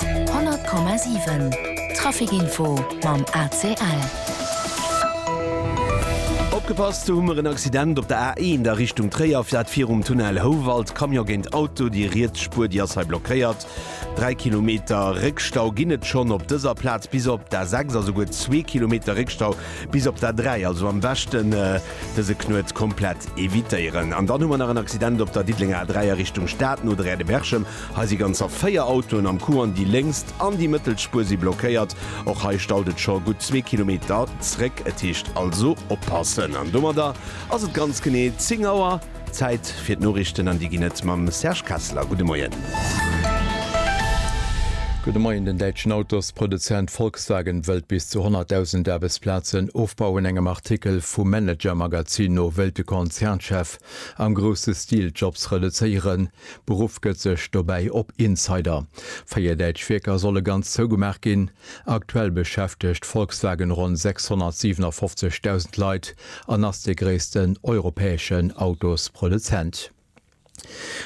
100,7 Traficinfo mam ACL. Opgepasst, do hu mer en Accident op der A1 a Richtung Tréier, dat virum Tunnel Houwald, Camion géint Auto, déi riets Spuer déi ass hei blockéiert, 3 Kilometer Réckstau ginn et schonn op dëser Plaz bis op d'A6 a souguer zwee Kilometer Réckstau bis op d'A3, also am beschten dëse Knuet komplett evitéieren. An dann hu mer nach en Accident op der Diddelenger A3 a Richtung Stad no der Rue de Berchem. Hei si ganzer 4 Autoen am Coup an déi lénkst an déi mëttelt Spuer si blockéiert. Och hei staut et scho gutt zwee Kilometer zréck. Et heescht also oppassen. An domadder ass et ganz genee 10 Auer. Zäit fir d'Noriichten an déi ginn et mam Serge Kessler. Gudde Moien. Gudde Moien. Den däitschen Autosproduzent Volkswagen wëllt bis zu 100.000 Aarbechtsplazen ofbauen. Engem Artikel vum Manager-Magazin no wëllt de Konzernchef am grousse Stil d'Jobs reduzéieren. Beruff gëtt sech dobäi op Insider. Véier däitsch Wierker solle ganz zougemaach ginn. Aktuell beschäftegt Volkswagen ronn 657.000 Leit an ass dee gréissten europäeschen Autosproduzent.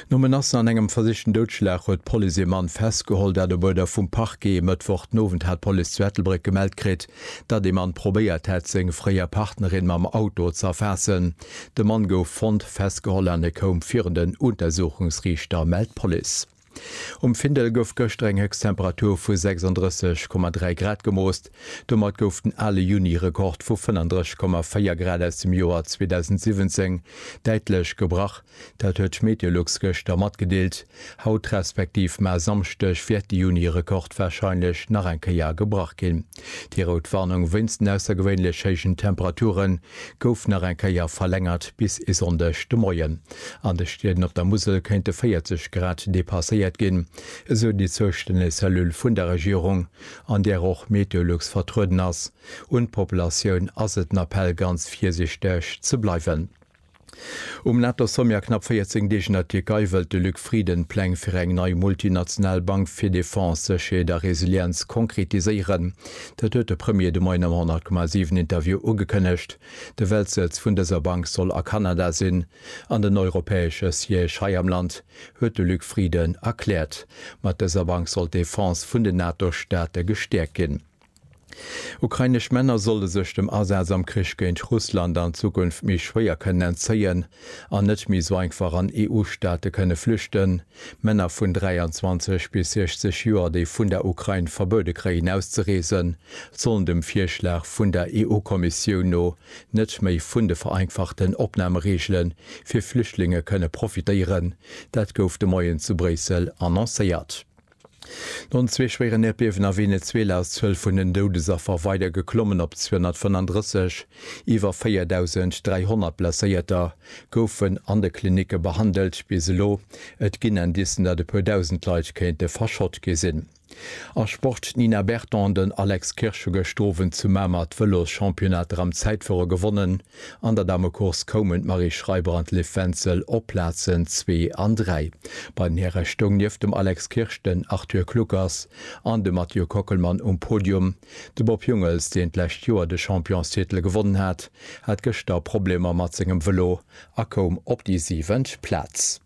No Menacen an engem versichten Doudschlag huet d'Police ee Mann festgeholl. Dat op Uerder vum Parquet. E Mëttwoch den Owend hat d'Police zu Ettelbréck gemellt kritt, datt ee Mann probéiert hätt, seng fréier Partnerin mam Auto z'erfaassen. De Mann gouf fonnt, festgeholl an e koum virun den Untersuchungsriichter, mellt d'Police. Um Findel gouf gëschter eng Héchsttemperatur vu 36,3 Grad gemoost. Domat gouf den ale Juni-Rekord vu 35,4 Grad aus dem Joer 2017 däitlech gebrach. Dat huet d'Meteolux gëschter matgedeelt. Haut respektiv mar Samschdeg wäert de Juni-Rekord warscheinlech nach eng Kéier gebrach ginn. Déi rout Warnung wéinst den aussergewéinlech héijen Temperature gouf nach eng Kéier verlängert bis e Sonndeg de Moien. An de Stieden op der Musel kéinte 40 Grad depasséiert ginn, esou déi zoustänneg Cellule vun der Regierung, an där och Meteolux vertrueden ass. Un d'Populatioun ass et en Appell ganz virsiichteg ze bleiwen. Um NATO-Sommet a knapp 14 Deeg an der Tierkei wëllt de Luc Frieden d'Pläng fir eng nei multinational Bank fir Defense, Sécherheet a Resilienz konkretiséieren. Dat huet de Premier de Moien am 100,7 Interview ugekënnegt. De Weltsëtz vun dëser Bank soll a Kanada sinn an den europäesche Siège hei am Land, huet de Luc Frieden erkläert. Mat dëser Bank soll d'Defense vun den NATO-Staate gestäerkt ginn. Ukrainesch Männer solle sech dem Asaz am Krich géint Russland an Zukunft méi schwéier kënnen entzéien an net méi sou einfach an EU-Staate kënne flüchten. Männer vun 23 bis 60 Joer, déi vun der Ukrain verbuede kréien auszereesen, sollen dem Virschlag vun der EU-Kommissioun no net méi vun de vereinfachten Opnamereegele fir Flüchtlinge kënne profitéieren. Dat gouf de Moien zu Bréissel annoncéiert. No zwee schwéieren Äerdbiewen a Venezuela ass d'Zuel vun den Doudesaffer weider geklommen op 235. Iwwer 4.300 Blesséierter goufen an de Klinicke behandelt bis elo. Et ginn Indicen, datt e puer Dausend Leit kéinte verschott gi sinn. A Sport, D'Nina Berton an den Alex Kirsch hu gëscht Owend zu Mamer d'Vëloschampionnat Ram Zäitfuere gewonnen. An der Damecourse koumen d'Marie Schreiber an d'Liv Wenzel op d'Plazen zwee an dräi. Bei den Häre stoung nieft dem Alex Kirsch den Arthur Kluckers an de Mathieu Kockelmann um Podium. De Bob Jungels, deen d'lescht Joer de Championstitel gewonnen hat, hat gëschter Problemer mat sengem Vëlo a koum op déi siwent Plaz.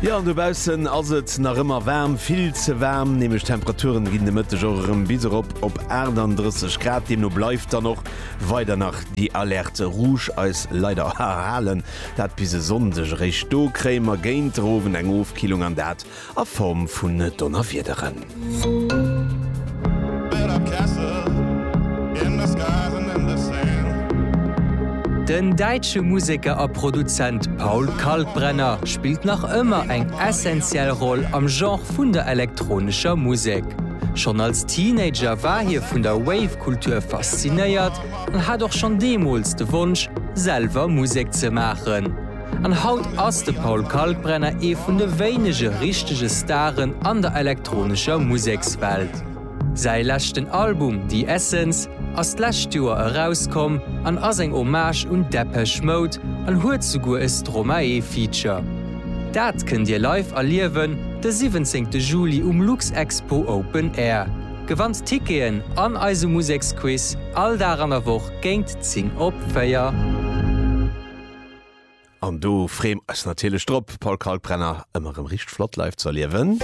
Jo, an dobaussen ass et nach ëmmer waarm, vill ze waarm, nämlech d'Temperaturen ginn de Mëtteg och erëm bis erop op 38 Grad. Deemno bleift dann och weider nach déi Alerte rouge eis leider erhalen. Dat bis e Sonndeg eréischt. Do kréie mer géint de Owend eng Ofkillung an dat a Form vun Donnerwiederen. Den däitsche Museker a Produzent Paul Kalkbrenner spillt nach ëmmer eng essentiell Roll am Genre vun der elektronescher Musek. Schonn als Teenager war hie vun der Wave-Kultur faszinéiert an hat och schonn deemools de Wonsch, selwer Musek ze maachen. An haut ass de Paul Kalkbrenner ee vun de wéinege richtege Staren an der elektronescher Musekswelt. Säi leschten Album The Essence ass d'lescht Joer erauskomm an ass eng Hommage un Depeche Mode an huet souguer e Stromae-Feature. Dat kënnt Dir live erliewen de 17 Juli um Luxexpo Open Air. Gewannt Ticketen an eise Museksquiz all Dag an der Woch géint 10 op 4. An do free mer eis natierlech drop, Paul Kalkbrenner ëmmer erëm richteg flott live ze erliewen.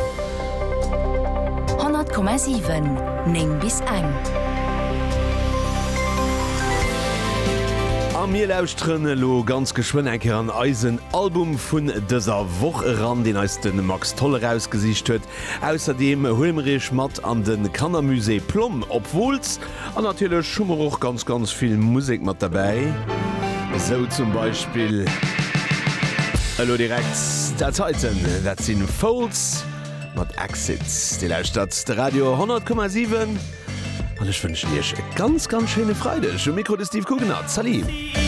100,7 9 bis eng. A mir lauschteren elo ganz geschwënn eng Kéier an eisen Album vun dëser Woch eran, deen eis de Max Tholl erausgesicht huet. Ausserdeem huele mer iech mat an de Kannermusée Plomm op Wooltz. An natierlech hu mer och ganz ganz vill Musek mat derbäi, esou zum Beispill elo direkt dat heiten, dat si Foals mat Exit. Dir lauschtert de Radio 10,7 an ech wënschen Iech e ganz ganz schéine Freideg. Um Mikro de Steve Kuckenert, Salut!